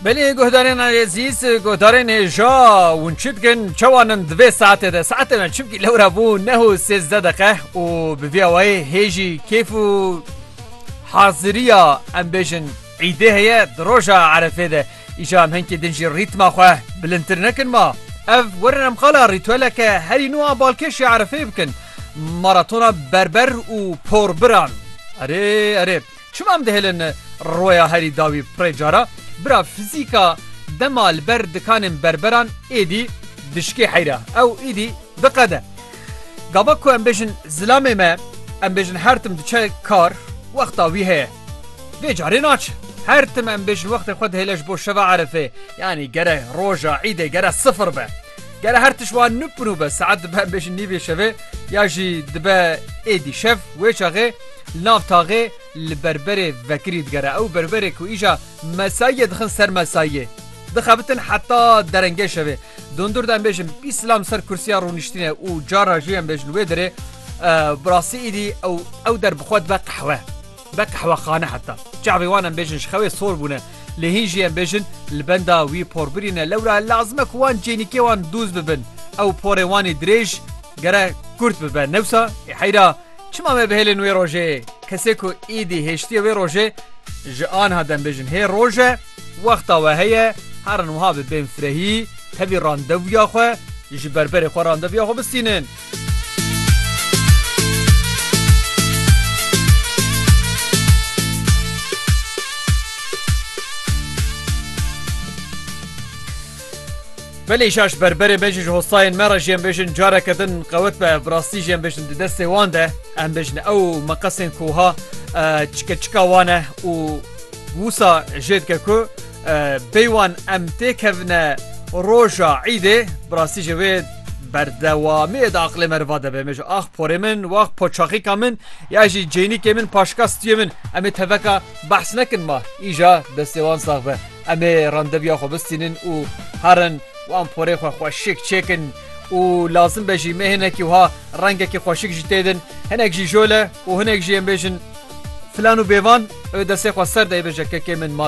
Belê guhdarên Ezîz guhdarên hêja hûn çi dikin çewanin divê saetê de saetê me çimkî lewra bû neho sêzde deqe û bi vî awayê hêjî kêf û haziriya em bêjin îdê heye di roja erefê de îşa em hinkî din jî rîtma xwe bilindtir nekin ma ev werin em xala rîtweleke herî nû a balkêşê erefê bikin maratona berber û porbiran erê erê Çima em dihêlin rûeya herî dawî pirê cara? Bira fizîka dema li ber dikanên berberan êdî dişikê heyra ew êdî diqede. Gava ku em bêjin zilamê me em bêjin her tim diçe kar wexta wî heye. Vê carê naçe. Her tim em bêjin wextê xwe dihêle ji bo şeva erefê yanî gere roja îdê gere sifir be. Gere her tişt wan nû bi nû be saet dibe em bêjin nîvê şevê ya jî dibe êdî şev wê çaxê Nav taxê li berberê vekirî digere. Ew berberê ku îja mesayiyê dixin ser mesayiyê, dixebitin heta derengê şevê. Dondur de em bêjin bîst silam ser kursiya rûniştînê û cara jî em bêjin wê derê. Bi rastî îdî ew ew der bi xwe dibe qehwe. Be qehwexane heta. Çavê wan em bêjin ji xewê sor bûne. Lê hîn jî em bêjin li benda wî por birîne. Lewra lazim e ku wan cênîkê wan dûz bibin. Ew porê wanî dirêj gere kurt bibe. Newsa ê heyra. Çima me bihêlin wê rojê? Kesê ku îdî hêştiye wê rojê ji anha dembêjin hê roj e, wexta we heye, herin wiha bi bên firehî tevî randevûya xwe ji berberê xwe randevûya xwe bistînin. Belê şaş berberê me jî ji hostayên me re jî em bêjin careke din qewet be bi rastî jî em bêjin di destê wan de em bêjin ew meqesên ku ha çike çika wan e û wisa jê dike ku bê wan em têkevine roja îdê bi rastî ji wê berdewamiyê de aqilê me riva debe me ji ax porê min wax poçaxîka min ya jî cênîkê min paşka stiyê min em ê teveka behs nekin ma îja destê wan sax be. Em ê randevuya xwe bistînin û herin wan porê xwe xweşik çêkin û lazim be jî me hinekî wiha rengekî xweşik jî têdin. Hinek jî jole û hinek jî ên bêjin filan û bêvan ê destê xwe ser de ê bêje kekê min ma